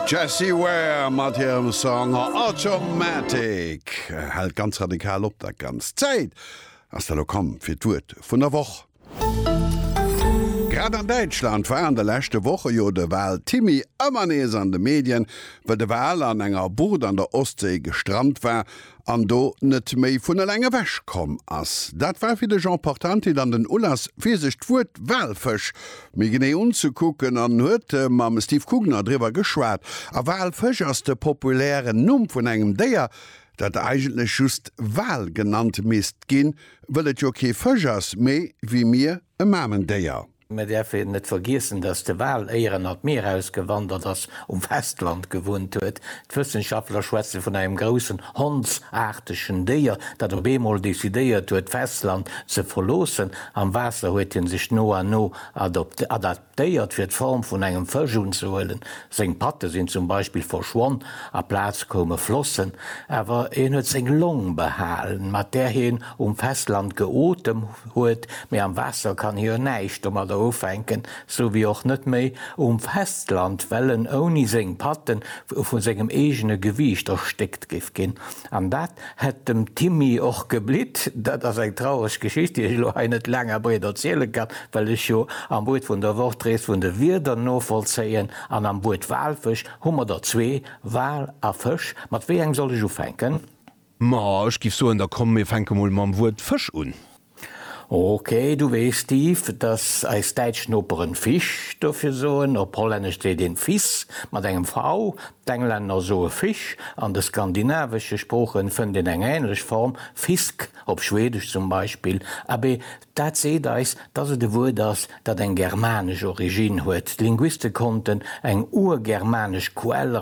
D'Jessie Ware mat hirem Song Automatic hält ganz radikal op. Dat Ganzt. D'Zäit ass da lo komm fir d'Wuert vun der Woch. Grad an Däitschland war an de leschte Woche jo de Wal-Timmy ëmmer nees an de Medien, well de Wal an enger Bucht an der Ostséi gestrannt war an do net méi vun eleng ewech komm ass. Dat war fir de Jean Portanti dann den Ulass fir sech d'Wuert Walfësch méi genee unzekucken an huet mam Steve Kugner driwwer geschwat. A Walfësch ass de populären Numm vun engem Déier, dat eigentlech just Wal genannt misst ginn, wëll et jo kee Fësch ass, mee wéi mir e Mamendéier. Mir däerfe net vergiessen, datt de Wal éier en an d'Mier ausgewandert ass, um Festland gewunnt huet. D'Wëssenschaftler schwätze vun engem groussen hondsaartegen Déier, dat op eemol decidéiert huet, d'Festland ze verloossen. Am Waasser huet hie sech no an no adaptéiert, fir d'Form vun engem Fësch unzehuelen. Seng Patte sinn zum Beispill verschwonn, a Plaz koume Flossen. Awer hien huet seng Long behalen, mat där hien um Festland geotem huet, mee am Waasser kann hie jo näischt domadder ufänken, sou wéi och net méi um Festland, well en ouni seng Patten vu sengem eegene Gewiicht erstéckt géif ginn. An dat hätt dem Timmy och geblitt. Dat ass eng traureg Geschicht, déi ech elo hei net laang a breet erziele kann, well ech jo am Buet vun der Woch d'Rees vun de Wierder novollzéien, an am Buet Walfësch hu mer der zwee, Wal a Fësch. Mat wéi engem soll ech ufänken? Ma ech giff soen, da komm mir fänke mol mam Wuert Fësch un. Ok, du weess, Steve, dass eis däitsch Noperen Fisch dofir soen. Op Hollännesch seet een vis, mat engem v. D'Englänner soe fish. An de skandinavesche Sproochen fënnt een eng änlech Form, fisk, op Schwedesch zum Beispill. Abee, Dat seet eis, dass et e Wuert ass, dat eng germanesch Originn huet. D'Linguiste konnten eng urgermanesch Quell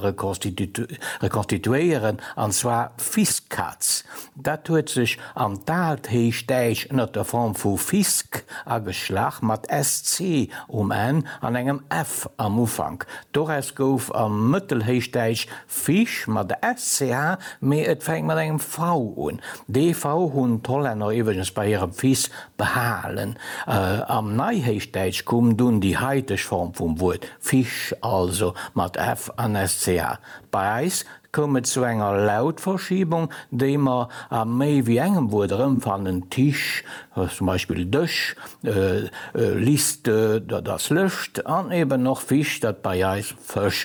rekonstituéieren, an zwar Fiskatz. Dat huet sech an d'alt Héichdäitsch ënner der Form vu Fisk ageschlach, mat sc um Enn an engem f am Ufank. Doraus gouf am Mëttelhéichdäitsch Fish mat SCH, mee et fänkt mat engem V un. Dee V hunn d'Hollänner iwweregens bei hirem Fils behalen. Am Neihéichdäitsch koum dunn déi haiteg Form vum Wuert Fisch, also mat F an SCH. Bei eis koum et zu enger Lautverschiebung, déi mer a méi wéi engem Wuert erëmfannen, Tisch, zum Beispill Dësch, Liste, dat ass Lëscht, an eben och Fisch, dat bei eis Fësch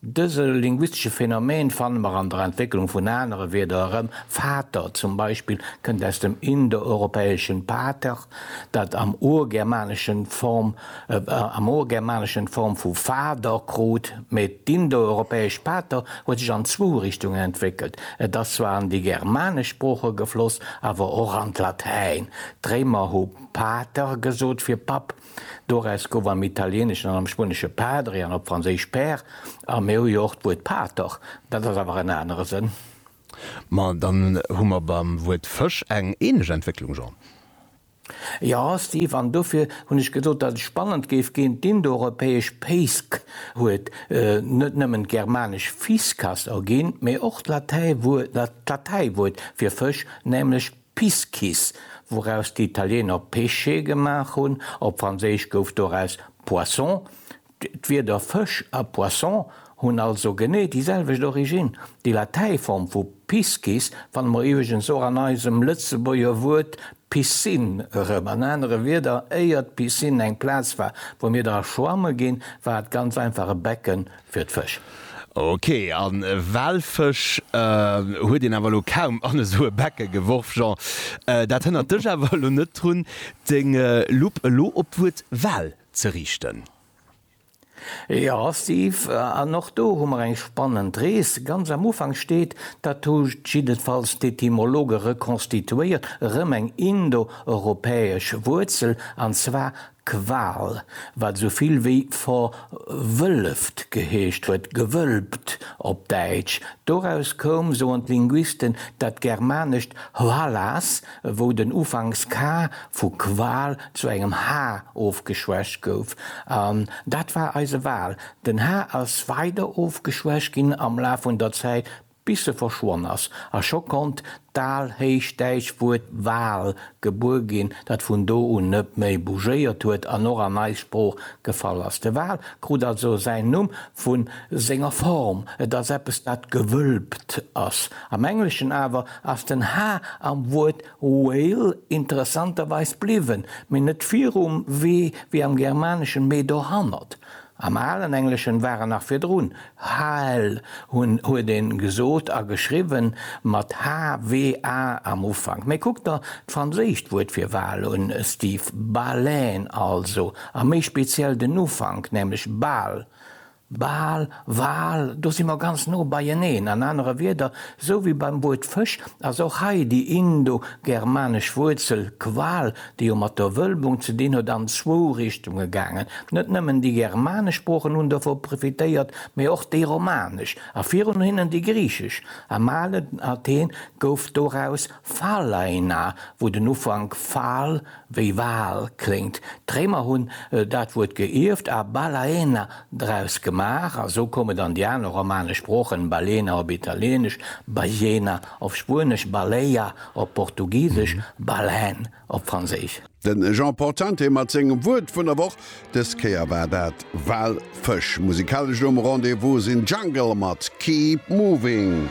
Dëse linguistesche Phänomen fanne mer an der Entwécklung vun anere Wierder erëm, Vater zum Beispill kënnt aus dem indoeuropäeschen pater, dat am Urgermaneschen d'Form am Urgermaneschen d'Form vu Fader krut. Mee d'indoeuropäesch pater huet sech an zwou Richtungen entwéckelt, et ass zwar an déi germanesch Sprooche gefloss, awer och an d'Latäin, d'Réimer hu pater gesot fir Papp, Doraus gouf am Italieneschen an am Spuenesche padre an op Franséisch père, a mir hu jo och d'Wuert pater, dat ass awer en anere Sënn. Ma dann hu mer beim Wuert Fësch eng ähnlech Entwécklung, Jean. Jo, Steve, an dofir hunn ech gesot, datt et spannend géif ginn, D'Indoeuropäesch peisc huet net nëmmen d'germanesch fiscas erginn, mee och d'Latäiwuert fir Fësch, nämlech. Piscis, wouraus déi Italiener Pesce gemaach hunn, op Franséisch gouf doraus Poisson. D'Wierder Fësch a Poisson hunn also genee déi selwecht Originn. Déi Latäiform vu Piscis fanne mer iwweregens och an eisem Lëtzebuerger Wuert Piscine erëm. An anere Wierder, éier d'Piscine eng Plaz war, wou mir dra schwamme ginn, war et ganz einfach e Becken, fir d'Fësch. Ok, a Walfësch huet een awer elo kaum an esou e Becke geworf. Jean, dat hënnert dech awer elo net drun, deng Lupp elo op d'Wuert Wal ze riichten? Jo, Steve, an och do hu mer eng spannend Rees. Ganz am Ufank steet, dat hu jiddefalls d'Etymologe rekonstituéiert, erëm eng indo-europäesch Wuerzel, an zwar Qual, wat esou vill wéi verwëlleft geheescht huet, gewölbt op Däitsch. Doraus koum, soen d'Linguisten, dat germanescht hvalas, wou den Ufanks ka vu Qual zu engem ha ofgeschwächt gouf. An dat war eise Wal. Den ha ass weider ofgeschwächt ginn am Laf vun der Zäit bis se verschwonn ass, a scho konnt d'alhéichdäitsch Wuert Wal gebuer ginn, dat vun do un net méi bougéiert huet an och an eis Sprooch gefall ass. De Wal krut also säin Numm vu senger Form, et ass eppes dat gewölbt ass. Am Engleschen awer ass den h am Wuert whale interessanterweis bliwwen, mee net virum w wéi am Germaneschen, mee dohannert. Am alen Engleschen war en nach virdrun, Hal hunn huet een gesot a geschriwwen, mat HWA am Ufank. Mee kuckt der d'franséischt Wuert fir Wal un, Steve, Baleine also, a méi speziell den Ufank, nämlech Bal, Bal, Wal, do si mer ganz no beieneen. An anere Wierder, sou wéi beim Wuert Fësch, ass och hei déi indo-germanesch Wuerzel Qual déi jo mat der Wölbung ze dinn huet, an zwou Richtunge gaangen, Net nëmmen déi germanesch Sproochen hunn dovun profitéiert, mee och déi romanesch a virun hinnen déi griichesch. Am alen Athen gouf doraus Phalaina, wou den Ufank phal wéi Wal kléngt. D'Réimer hunn dat Wuert geierft a balaena draus gemaach, a sou koum et an déi aner romanesch Sproochen, Balena op Italieenesch, Bajena Op Spuenesch baleia, op Portugisesch baleine, op Franséisch. De Jean Portante mat sengem Wuert vun der Woch. Dës Kéier war dat Walfësch. Musikalesch no um Rendez-vous sinn Jungle mat Keep Moving.